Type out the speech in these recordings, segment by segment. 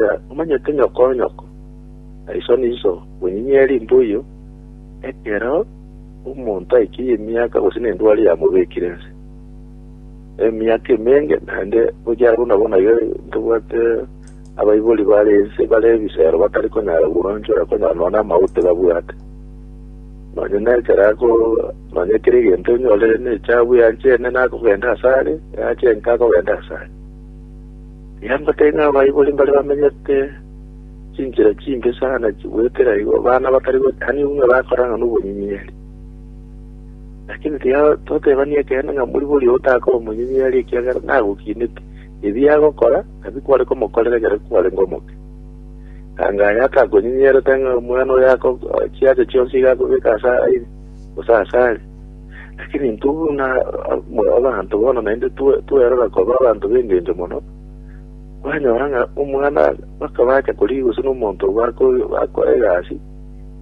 Aya omanyete nyoko nyoko, na iso niso, bonyinye rimbuyu, ekero omonto aikirie emiaka gose nendwari yamobekire ense. Emiaka emenge naende gochia buna bono iga ntobwate abaibori bare ense bare ebisero batari konyara gwanchora konyora nonya amaute babwate. Nonya nekero ako nonya kere egento onyore nechabu yanchene nakogenda asare, yachenka akogenda asare. Nambatae ng'a abaibori mbare bamenyete chinchera chimbe sana chigoetera igo abana batari gotania ng'a bakorang'a nobonyinyeri. Lakini tiga totebania ekeene ng'a moribori oyo takoba omonyinyeri ekiagera nagokinete, ebi agokora nabi kware komokorera ekero kwarenge omoke. Anga aye atakonyinyerete ng'a omwana oyo ako chiacha chionsi iga akobeka ase aire, gose ase are. Lakini intwe buna abanto bono naende twerora koba abanto b'engencho mono, kwanyora ng'a omwana bakabacha korigia gose nomonto bakora egasi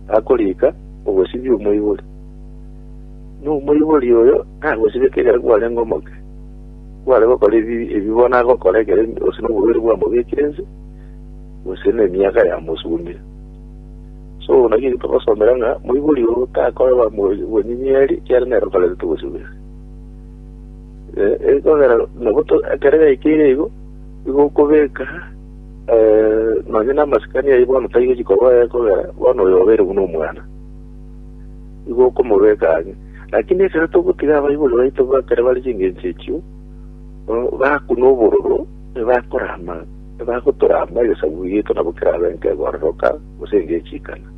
akorika ogosibia omoibori, na omoibori oyo nagosibeka ekero kwarenge omoke, kware gokora ebibe bono agokora ekero gose noborwaire bwamobekire inse, gose nemiaka yamosumire. So naki eke togosomera ng'a moibori oo takoraba bonyinyeeri ekiagera nere otoretete obosibwa. Ekogera nabo ekero yaikeire igo, igo okobeka nonye namasikani ayio bono taigochi koba oye ekogera bono oyo obeire buna omwana. Igo okomobeka ang'e. Lakini ekero togotiga abaibori baito ekero bare chingencho echio, bakuna obororo, nibakorama, nibagotorama egesaku giaito nabo kerabe nkebororoka, gose ngechikana.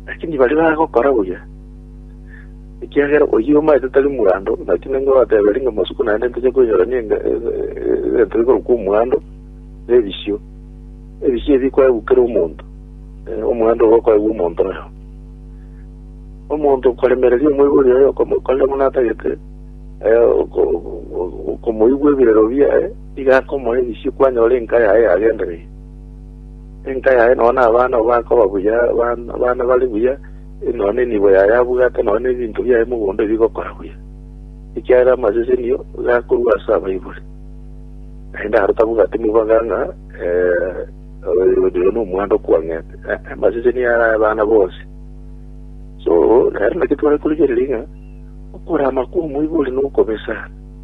Lakini baria bagokora buya, ekiagera oyio omaete tari mwandu, naki ning'o orateberi ng'a masuku naende ntoche koinyorania enga- e- e- egento gekorokwa omwandu na ebisio? Ebisio ebi bikoegwa kera omonto, eh, omwandu obo okoegwa omonto oyomo. Omonto okoremereria omoibori oye okomokorera buna atagete, eh, oko- oko- okomoigwa ebirero biaye, iga akomoa ebisio kwanyora enka yaye yagendereire. Enka yaye nonya nabana oo bakoba buya, abana bare buya, nonya nenibo yaye abwate, nonya nebinto biaye mogondo ebigokora buya, ekiagera amasesenio gakorwa ase abaibori. Naende aro tabwati mobaga ng'a oyo nomwando okwang'ete, amasesenio are ay'abana bonsi. So, nere naki tware korigereria ng'a okorama kw'omoibori nokobesana.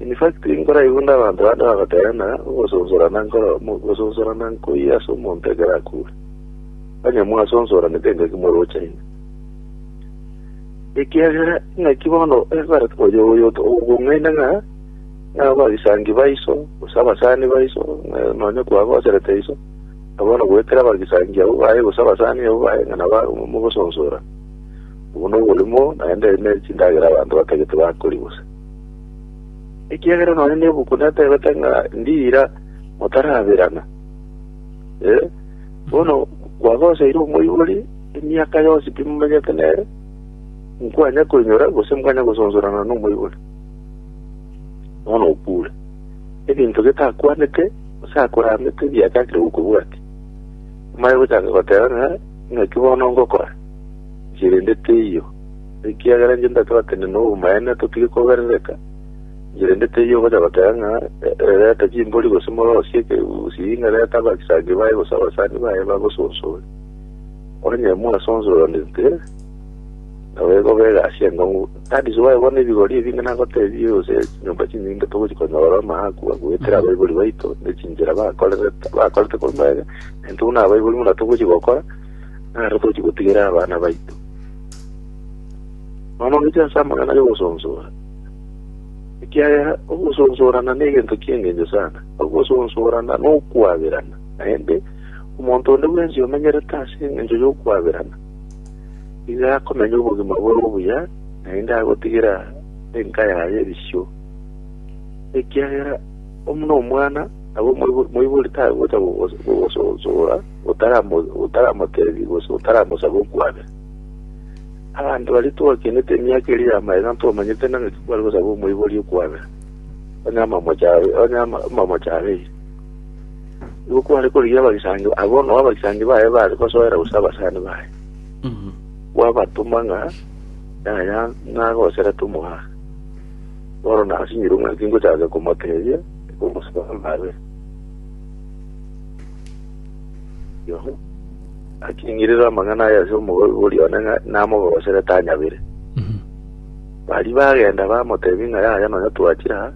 University enkoro aye bonde abanto bande bagoteba ng'a ogosonsorana nkoro gosonsorana nkoyi ase omonto ekero akure. Onye mwasonsoranete engaki morochaine. Ekiagera ing'aki bono ebarete oyo oyo ogong'aina ng'a abagisangi baiso gose abasani baiso nonya kwagoserete iso na bono goetera abagisangi abwo baye gose abasani abwo baye ng'a naba mogosonsora. Obo noborimo, naende ere ne chindagera abanto batagete bakori bose. Ekiagera nonya nebuku netebete ng'a ndiira motaraberana. Eh, bono kwagoseire omoibori emiaka yonsi pi mumenyete nere, nkwanya koinyora gose mwanya gosonsorana nomoibori. Bono okure. Ebinto getakwanete gose akoramete biachakire gokobwati. Amare gochaka goteba ng'a Naki bono ngokora, inche rende teiyo, ekiagera inche ndatwatene nobomaene, totige koberereka, inche rende teiyo ogocha goteba ng'a e- reta chimbori gose morosie ekegusii ng'a reta abagisagi baye gose abasani baye bagosonsore. Onye mwasonsoranete, nabo ekoba egasi enkongu. Tadisi baye bono ebigori ebi ng'a nagotebie gose chinyomba chinyinge togochi konyora amaakwa goetera abaibori baito ne chinchera bakorerete bakorete korwa mabega, Intwe buna abaibori buna togochia gokora, naro togochia gotigera abana baito. Nonya ongiche ase amang'ana y'ogosonsora, ekiagera ogosonsorana negento ki'engencho sana. Ogosonsorana nokwaberana, naende omonto onde bwensi omenyerete ase engencho y'okwaberana, nigo akomenya obogima bore obuya, naende agotigera enka yaye erisio, ekiagera Buna omwana nabo moibori tagocha gososoora otaramotebia gose otaramosaba okwabera. Abanto baria twakenete emiaka eria ya magega ntwamanyete nang'o ki kware gosaba omoibori okwabera, onye amamocha abeire. Nigo kware korigia abagisangio abwo nao abagisangio baye baare gosoera gose abasani baye, kwabatoma ng'a yaya nagoserete omogaaka. Bono nasinyirwe ng'a tingochaka komoteebia ekogosaba nabe. Yoh. Aking'irera amang'ana aya ase omogoigo oria one ng'a namogosere tanyabire. Baria bagenda bamoteebia ng'a yaya nonya twachire aa,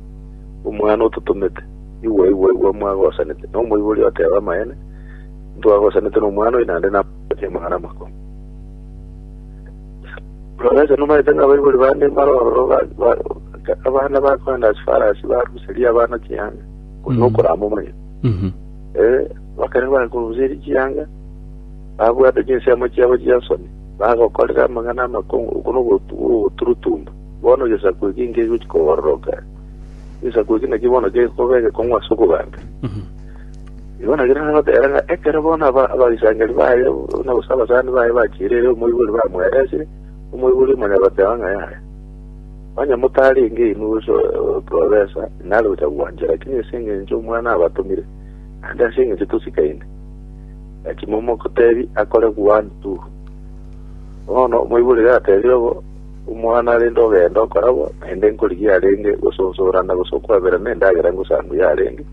omwana ototomete, igwa igwa igwa mwagosanete. Na omoibori oteeba amaene, intwagosanete nomwana oyo naende namotebia amang'ana amakong'u. Roracha nomaete ng'a abaibori bande maroro abana bakoenda ase farasi baruserie abana chihanga korwa nokorama omonyene. Eh, bakare bakoruserie chihanga babwate chinsemo chiabo chi'ensoni bagokorera amang'ana amakong'u oko nogoturutumba bono egesaku eki nkegochi kobororoka egesaku eki nakio bono gekobegekong'u ase okogancha Igo nagere nagoteba ng'a ekero bono aba- abaisangeri baye, buna gose abasani baye bachiire ere omoibori bamweresire, omoibori omanya goteba ng'a yaya, onye motarenge inwe gose o- oprofesa, nare gocha gwancha, lakini ase engencho omwana abatomire, naende ase engencho tosikaine, nachi momotebi akore one, two. Bono omoibori gatebire obo, omwana rende ogenda okora bo, naende nkorigia arenge gose osoorana gose okwaberana endagera ngosangu yarenge.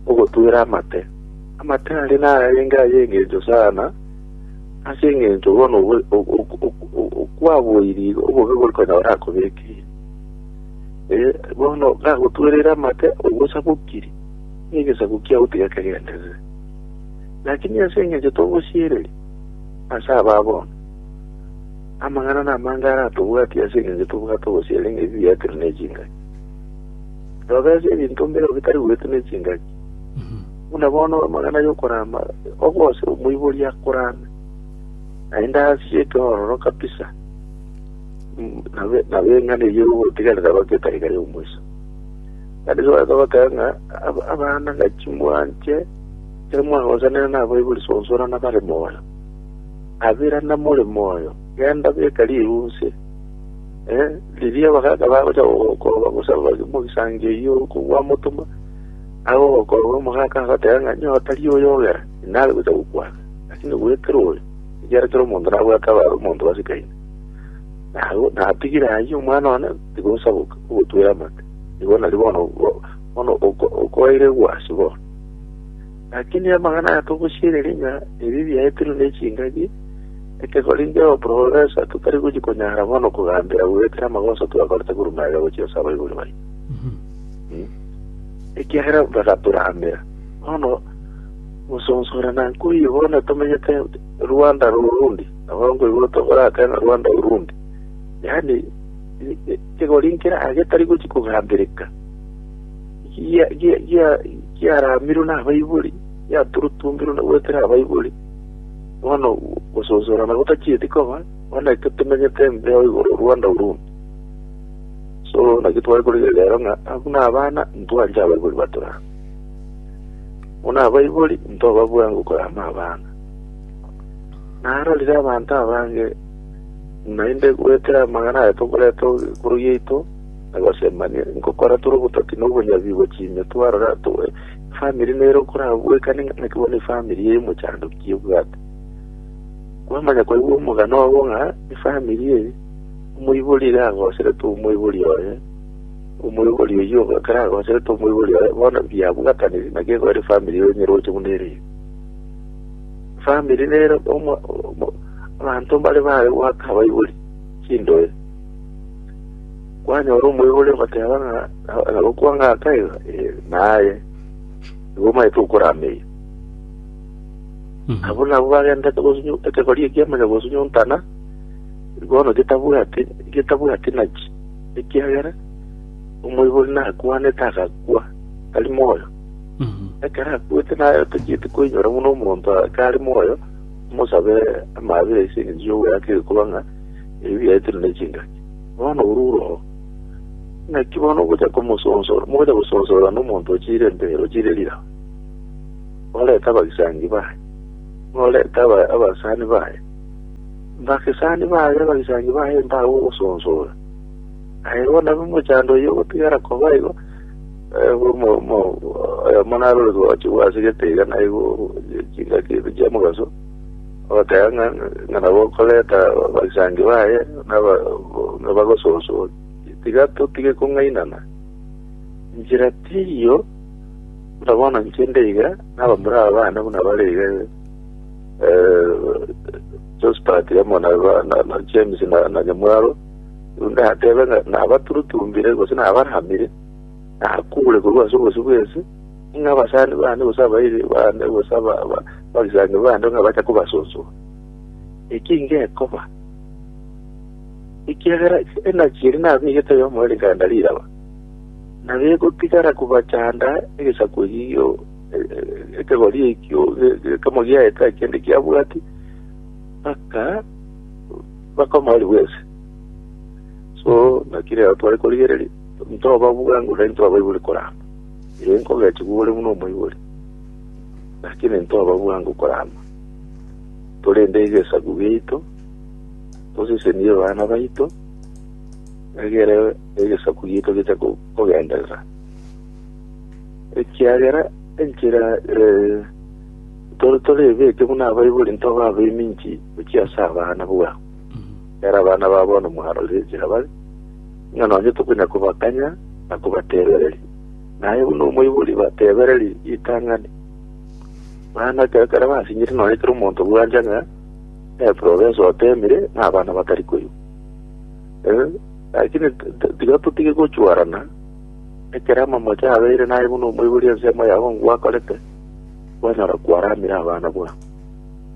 ogotwera amate. Amate aria nararenge ay'engencho sana, ase engencho bono obo- o- o- o- o- o- kwaboiri obobe bori konya orakobekeire. Eh, bono gagotwerire amate ogosa bokiri, na egesaku kiao tigekegenderere. Lakini ase engencho togosiereri ase aba bono, amang'ana namange aratobwatia ase engencho tobwate ogosiera ng'a ebibe biaito biri ne chingaki. Robereria ebinto mbero bitari goetwa nechingaki, buna bono amagena y'okorama ogose omoibori akorame, naende ase ekeororo kabisa mm, na be- na beng'ana eyio ogotigerera goka etari kare omoisa. Kandi soeta goteba ng'a ab- abana ng'a chimwanche ekero mwagosanera nabaibori sonsorana bare moyo. Abera namore moyo, genda beka rirunse Eh, riria abagaaka bagocha gogokoba gose ababani mu gesangi eyio kogwamotoma, agogokoba omogaaka agoteba ng'a nyoo tari oyo ogera, inare gocha gokwana, lakini gwekera oyo, ekiagera kera omonto nabwate abare omonto basikaine. Nago natigire ayio omwana one tiga osaboke ogotwera amate. Nigo nari bono bo- bono oko- okoeire egwasi bono. Lakini amang'ana aya togosiereria ng'a ebi biaetirwe nechingaki, ekegori ndeo profesa totari gochia konyara bono kogambera goetera amagoso twakorete korwa maega gochia ase abaibori baito, ekiagera bagatorambera. Bono gosonsorana nkoiyo bono tomenyete Rwanda Urundi, nabo nkoigwa tokorake ng'a Rwanda Urundi, yaani ekegori nkere aye getari gochia kogambereka. gia- gia- gia- giaramirwe nabaibori, giaturutumbirwe na goetera abaibori, bono gososorana gotachieti koba, bono ekio tomenyete embe o igoro o Rwanda Urundi. So, naki tware korigereria rero ng'a abwo nabana, ntwanche abaibori batorama. Buna abaibori, ntoba bwango korama abana. Narorire abanto abange, naende goetera amang'ana aye tokoreta korwa yaito, na gosemania nkokora tore obototi na obonyabi bwe chimio twarora atoe efamiri nere okorabwekane ng'ana ki bono efamiri eye omochandoki ebwate kwamanya kwaigwa omogano obo ng'a efamiri eye omoibori iga agoserete omoibori oye omoibori oyio ekero agoserete omoibori oye bono biabwataniri naki egoera efamiri eye enyeroche buna ere eye famiri nere omo- omo- abanto mbare bare goaka abaibori chindoe Kwanyora omoibori ogoteba ng'a nagokwa ng'a aka iga, ee, naye, nigo omanyete okorameiyo. Abwo nabwo bagendete gosunywa ekegori ekia manya gosunywa ontana, bono getabwati getabwati nachi, ekiagera omoibori nakwanete agakwa tari moyo. Mhm. Ekero akwete naye otachieti koinyora buna omonto akare moyo, omosabe amaabera ase eng'encho y'ogoyaka egekoba ng'a ebiaetire ne chingaki. Bono orure oo, naki bono ogocha komosonsora, mogocha gosonsora nomonto ochire empero, ochire riramu. Orete abagisangi baye, orete aba- abasani baye, bagisani baye, abagisangi baye mbabe ogosonsora. Aye bono abe omochando oyio ogotigara koba igo, eh, omo- omo- oyo monarore gochi gwasegete iga naigo chingaki ebi chiamogaso. Abateba ng'a ng'a nabo okoreta abasangi baye naba- nabagososoria. Tiga totige kong'ainana. Enchera tiyo, buna bono inche ndeiga, nabamura aba bane buna bare iga eh, Josephat amo na ba- na- na James na na Nyamwaro, ndatebe ng'a nabaturutumbire gose nabaramire, nakure korwa ase obosio bw'ense, Ng'a abasani bande gose abairi bande gose abagisani bande ng'a bacha kobasosoa, eki ngekoba, ekiagera enachi eria nabegete oyomo ere nkagenda riraba, na begotigara kobachanda egesaku ekio ekegori ekio ekemo giaye tari kende kiabwati, mpaka bakomorigwe ense. So naki rero tware korigereria, intobabua nguru, intwabaibori korama. Ere nkogetigwa ore buna omoibori, naki nintoba bwango korama. Korende egesaku giaito tosesenirie bana baito, egere egesaku giaito geche ko- kogenderera. Ekiagera enchera eh, tore torebeke buna abaibori ntoba abeminki gochia ase abana bwao. Nere abana ba bono mwarorire enchera bare, ng'a nonye tokonya kobakanya na kobatebereria. Naye buna omoibori batebereria ritang'ani, bana ekero kare basinyire nonye kera omonto bwancha ng'a eprovensi otemire na abana batari koigwa. Eh, Lakini t- t- tiga totige gochwarana ekero amamocho abeire naye buna omoibori ensemo yao ngwakorete, kwanyora kwaramire abana bwao.